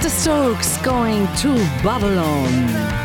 The Strokes, Going to Babylon.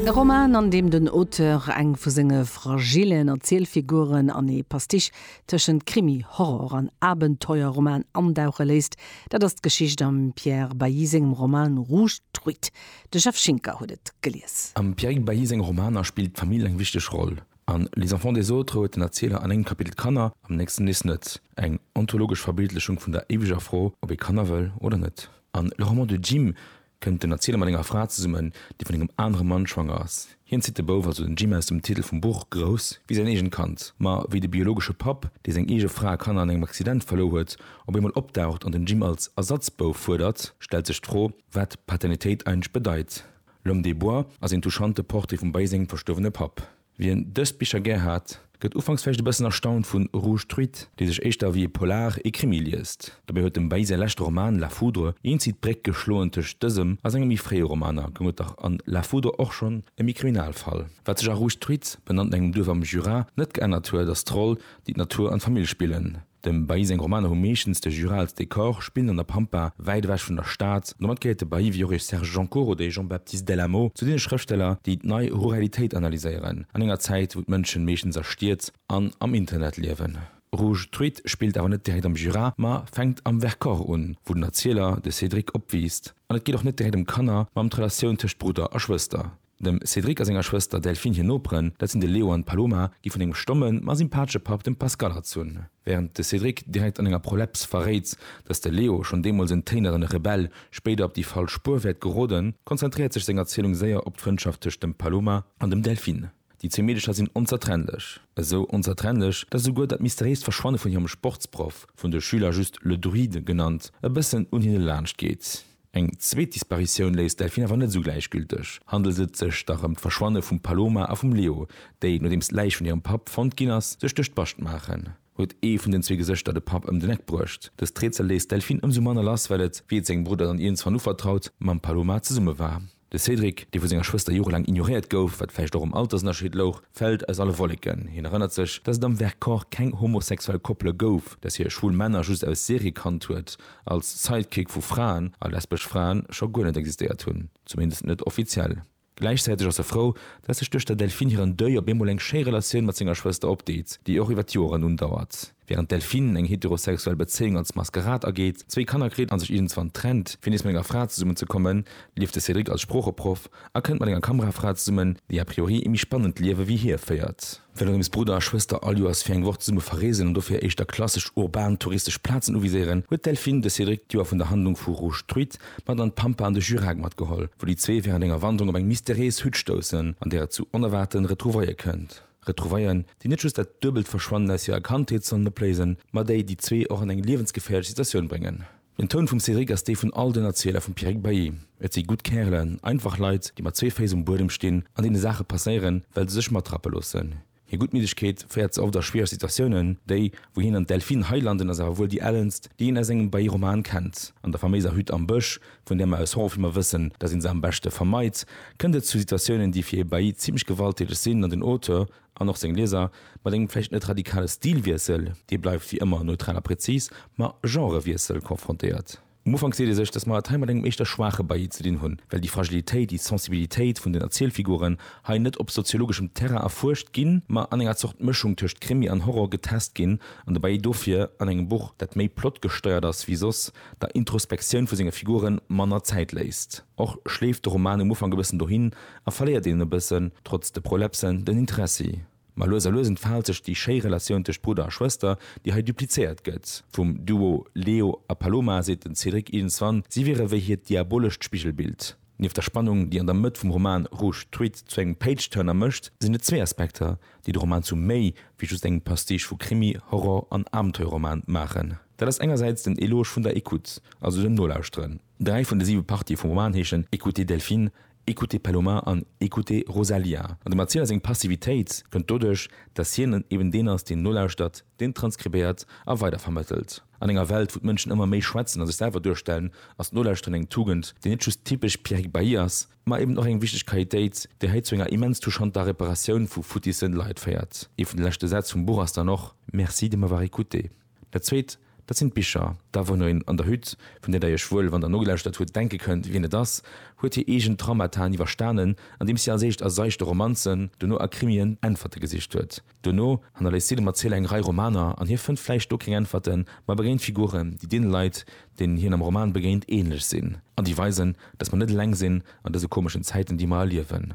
E Roman, an deem den Auteur eng vu senge fragillen Erzielfiguren an ee Pastiche tëschent Krimi, Horror an Abenteuerroman andauche léisst, dat ass d'Geschicht am Pierre Bailly sengem Roman Rouge Truite. De Jeff Schinker huet et gelies. Am Pierrick Bailly senge Romaner spillt d'Famill eng wichteg Roll. An Les enfants des autres huet den Erzieler an engem Kapitel d'Kanner, am nächsten nees net. Eng ontologesch Verbildlechung vun der éiweger Fro, ob ee Kanner wëll oder net. An Le roman de Jim kënnt den Erzieler mat enger Fra zesummen, déi vun engem anere Mann schwanger ass. Hien zitt de Bouf, also den Jim aus dem Titel vum Buch, grouss, wéi säin eegent Kand. Ma wéi de biologesche Papp, dee seng eege Fra a Kanner an engem Accident verluer huet, op eemol opdaucht an den Jim als Ersatzbouf fuerdert, stellt sech d'Fro, Wat Paternitéit eigentlech bedeit. L'homme des bois ass een touchante Portrait vum Bailly sengem verstuerwene Papp. Wien dës Bicher gär hat, gëtt ufanks vläicht e bëssen erstaunt vun Rouge truit, dee sech éischter ewéi e Polar, e Krimi liest. Dobäi huet dem Bailly säi leschte Roman La foudre eenzitt d'Bréck geschloen tëscht dësem a senge méi fréie Romaner, goung et dach an La foudre och schonn ëm ee Kriminalfall. Wat sech a Rouge truit, benannt no engem Duerf am Jura, net geännert huet, ass d'Roll, déi d'Natur an d'Famill spillen. Dem Bailly seng Romaner hu meeschtens de Jura als Dekor, spillen an der Pampa, wäit ewech vun der Stad. Domat gehéiert de Bailly, wéi och e Serge Joncour oder e Jean-Baptiste Del Amo, zu deene Schrëftsteller, déi d'Nei Ruralitéit analyséieren, an enger Zäit, wou d'Mënschen meeschtens a Stied an am Internet liewen. Rouge Truite spillt awer net direkt am Jura, ma fänkt am Vercors un, wou den Erzieler, de Cédric, opwiisst. An et geet och net direkt ëm Kanner, ma ëm d'Relatioun tëscht Brudder a Schwëster. Dem Cédric a senger Schwëster Delphine hir Noperen, dat sinn de Leo an d'Paloma, gi vun engem stommen, ma sympatesche Papp, dem Pascal, erzunn. Wärend de Cédric direkt an enger Proleps verréit, datt de Leo, schonn deemools en téineren Rebell, spéider op déi falsch Spuer wäert geroden, konzentréiert sech seng Erzielung séier op d'Frëndschaft tëscht dem Paloma an dem Delphine. Déi zwee Meedecher sinn onzertrennlech. Esou onzertrennlech, datt esouguer dat mysteriéist Verschwanne vun hirem Sportsproff, vun de Schüler just le Druide genannt, e bëssen un hinne laanscht geet. Eng zweet Disparitioun léisst d'Delphine awer net esou gläichgülteg. Handelt et sech da rëm d'Verschwanne vum Paloma a vum Leo, déi, nodeems d'Läich vun hirem Papp fonnt ginn ass, sech duerch d'Bascht maachen? Huet ee vun den zwee Gesëschter de Papp ëm den Eck bruecht? Dëst Rätsel léisst d'Delphine ëmsou manner lass, well et, wéi et sengem Brudder dann iergendwann uvertraut, mam Paloma zesumme war. De Cédric, dee vu senger Schwëster jorelaang ignoréiert gouf, wat vläicht och um Altersënnerscheed louch, fält aus alle Wolleken. Hien erënnert sech, datt et am Vercors keng homosexuell Koppele gouf, datt hie schwul Männer just aus Serie kannt huet, als Sidekick vu Fraen, a lesbesch Fraen scho guer net existéiert hunn, zumindest net offiziell. Gläichzäiteg ass e frou, datt sech duerch der Delphine hiren Deuil op eemol eng schéi Relatioun mat senger Schwëster opdeet, déi och iwwer d'Joren undauert. Während Delphine eng heterosexuell Bezéiung als Maskerad ageet, zwéi Kanner kritt an sech iergendzwann trennt, fir nees mat enger Fra zesummen ze kommen, lieft de Cédric als Sproocheproff a kënnt mat enger Kamerafra zesummen, déi a priori ee méi spannend Liewe wéi hie féiert. Well Rims Brudder a Schwëster all Joers fir eng Woch zesumme verreesen an dofir éischter klassesch urban touristesch Plazen uviséieren, huet d'Delphine de Cédric d'Joer vun der Handlung vu Rouge Truite mat an d'Pampa an de Jurag matgeholl, wou déi zwee während enger Wanderung op eng mysterees Hütt stoussen, an där et zu onerwaarten Retrouvaille kënnt. Retrouvaillen, déi net just dat duebelt Verschwannen aus hirer Kandheet sollen opléisen, ma déi déi zwee och an eng liewensgeféierlech Situatioun bréngen. Den Toun vum Cédric ass dee vun all den Erzieler vum Pierrick Bailly. Et si gutt Kärelen, einfach Leit, déi mat zwee Féiss um Buedem stinn an deene Saache passéieren, well se sech matrappe loossen. Hir Guttmiddegkeet féiert se oft a schwiereg Situatiounen, déi, wou hien an d'Delphine hei landen, ass awer wuel déi ellenst, déi een aus engem Bailly-Roman kennt, an der faméiser Hütt am Bësch, Vun där mer aus hoffen, mer wëssen, dass ee se am beschte vermeit, kënnt et zu Situatiounen, déi fir ee Bailli zimmlech gewalttäteg sinn an den Auteur an och seng Lieser mat engem vläicht net radikale Stilwiessel, dee bleift wéi ëmmer neutral a prezis, ma Genrewiessel konfrontéiert. Um Ufank seet ee sech, dass mer et hei mat engem éischter schwaache Bailli ze dinn hunn, well déi Fragilitéit, déi Sensibilitéit vun den Erzielfiguren hei net op soziologeschem Terrain erfuerscht ginn, ma an enger Zort Mëschung tëscht Krimi an Horror getest ginn an de Bailli dofir an engem Buch, dat méi plotgesteiert ass wéi soss, der Introspektioun vu senge Figuren manner Zäit léisst. Och schleeft de Roman um Ufank e bëssen dohin a verléiert een e bëssen, trotz de Prolepsen, den Interessi. Ma lues a lues entfaalt sech déi schéi Relatioun tëscht Brudder a Schwëster, déi hei duplizéiert gëtt. Vum Duo Leo a Paloma seet den Cédric iergendswann, si wiere wéi hiert diabolescht Spigelbild. Nieft der Spannung, déi an der Mëtt vum Roman Rouge Tweed zu engem Page-Turner mécht, sinn et zwee Aspekter, déi de Roman zu méi wéi just engem Pastiche vu Krimi, Horror an Abenteuerroman maachen. Dat ass engersäits den Eloge vun der Écoute, also dem Nolauschteren. Dräi vun de siwe Partië vum Roman heeschen Écoutez Delphine, Écoutez Paloma an Écoutez Rosalía. An dem Erzieler seng Passivitéit kënnt doduerch, datt hien eben deen ass, deen nolauschtert, deen transkribéiert a weidervermëttelt. An enger Welt, wou d'Mënschen ëmmer méi schwätzen a sech selwer duerstellen, ass d'Nolauschteren eng Tugend, déi net just typesch Pierrick Bailly ass, ma eben och eng wichteg Qualitéit, déi hei zu enger immens touchanter Reparatioun vu futisse Leit féiert. Ee vun de leschte Sätz vum Buch ass dann och Merci de m'avoir écoutée. Dat Zweet, dat sinn d'Bicher. Da wou en an der Hütt, vun där Der Iech wuel, wann Der nogelauschtert hutt, denke kënnt, wien et ass, huet hir eegen Traumataen iwwerstanen, andeems si als éischt a seichte Romanzen, dono a Krimien Äntwerte gesicht huet. Dono hannerléisst si dem Erzieler eng Rei Romaner an hie fënnt vläicht do keng Äntwerten, ma e begéint Figuren, déi deene Leit, deenen hien am Roman begéint, änlech sinn an déi weisen, dass mer net eleng sinn an dëse komeschen Zäiten, déi mer erliewen.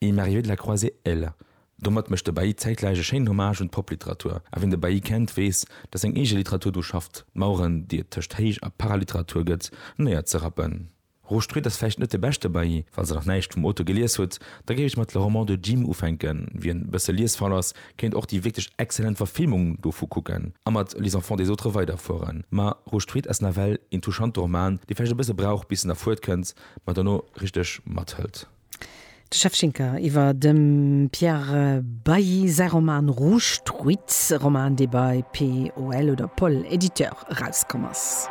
Il m'est arrivé de la croiser, él. Domat mécht de Bailly zäitgläich e schéinen Hommage un d'Popliteratur. A wien de Bailly kennt, weess, datt seng eege Literatur dru schafft, d'Maueren, déi et tëscht Héich a Paraliteratur gëtt, néier ze rappen. Roger Street ass vläicht net de beschte Bailly. Falls Der nach näischt vum Auteur gelies hutt, da géif ech mat Le roman de Jim ufänken. Wien e bësse liesfaul ass, kéint och déi wierklech exzellent Verfilmung dovu kucken a mat Les enfants des autres weiderfueren. Ma Roger Street ass nawell een touchante Roman, dee vläicht e bësse brauch, bis en erfuert kënnt, ma dono richteg mathëlt. De Shevchenka iwwer dem Pierre Bailly säi Roman Rouge Truites, e Roman, dee bei POL oder Poll Éditeur erauskomm ass.